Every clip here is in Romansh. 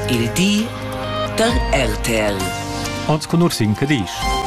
Il di da RTL. Oz cunorsin che disch.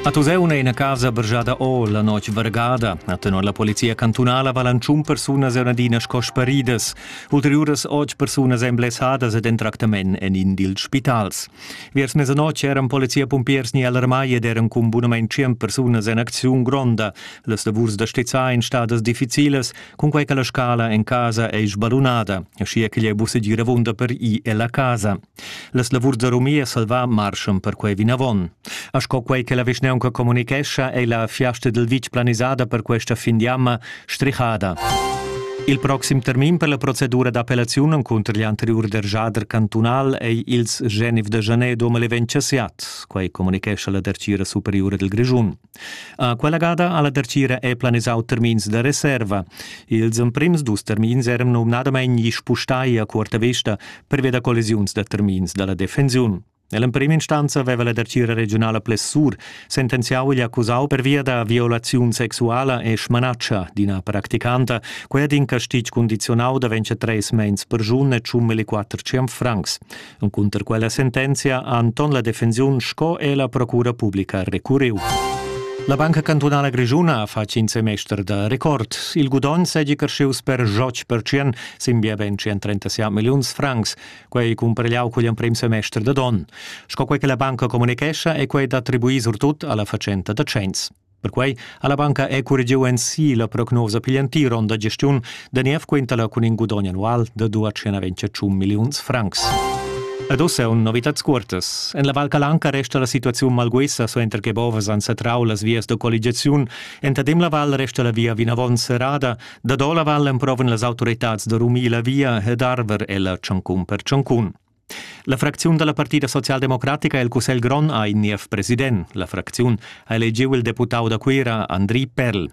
A Tuseuna è ina casa bergiada o la notg vargada. A tenor la polizia cantunala valan tschun persunas e adina sco sparidas. Ulteriuras otg persunas èn blessadas ed en tractament en in dils spitals. Viers mesanotg eran polizia-pumpiers ni alarmai ed eran cun bunament tschient persunas en acziun gronda. Las lavurs da stizzar ein stadas difficilas Cunquei che la scala en casa ei sbadunada, aschia ch'igl ei buca dir avunda per i ella casa. Las lavurs da rumia salva marschan per quei vinavon. A sco quei che la vischneunca comunicescha, ei la fiasta dil vitg planisada per questa fin di amma strihada. Il proxim termin per la procedura d'appellaziun encunter gli anteriur dergiader cantunal ei ils Genif de Jané domel eventschiat, quei comunicescha la dertgira superiura dil Grischun. Quella gada alla dertgira è planisau termins da reserva. Ils emprims dus termins eran numnadamein gli spustai a cuorta vesta pervia da collisiuns da termins dalla defensiun. Nell'emprima instanza aveva la dertgira regionala Plessur sentenziau gli accusau pervia da violaziun sexuala e smanaccia d'ina practicanta, quella d'in castig condizionau da ventsche treis mens per giun e tschum e quatter ciam francs. Encunter quella sentenzia ha Anton la defensiun sco e la procura publica recurriu. La Banca Cantunala Grischuna ha fatg in semester da record. Il gudogn seigi crescius per joc pertschien sin bia ben 137 milliuns francs, quei cumpargliau cugl emprem semester da don. Sco quei che la banca communichescha è quei d'attribuir surtut alla fatschenta da cenns. Perquei ha la banca ecurgiu ensi la prognosa pigl entir onn da gestiun da niev quintala cun in gudogn annual da 228 milliuns francs. Ed ussa un novitads cuortas. En la Val Calanca resta la situaziun malguessa suenter che bovas han satrau las vias da colligiaziun. Entadem la val resta la via vinavon serrada. Da do la val emprovan las autoritads da rumir la via ed arver ella tschancun per tschancun. La fracziun da la partida socialdemocratica el Cussegl grond ha in niev president. La fracziun ha elegiu il deputau da Cuira Andri Perl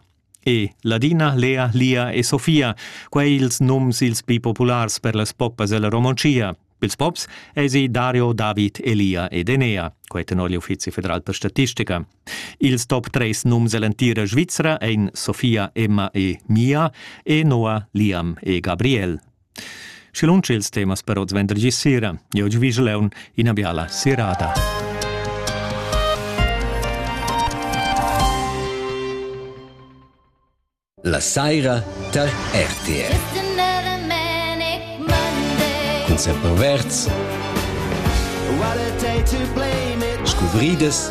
e Ladina, Lea, Lia e Sofia, quei ils nums ils pli populars per las poppas ella Romontschia. Pils pops esi Dario, David, Elia ed Enea, quei tenor l'Uffizi federal per statistica. Ils top 3 nums ell'entira Svizra ein Sofia, Emma e Mia e Noah, Liam e Gabriel. Schi lunsch ils temas per oz vendergi sera. Io vi Leon ina biala serata. La saira tar RTR. Cun semper verds. Scuvridas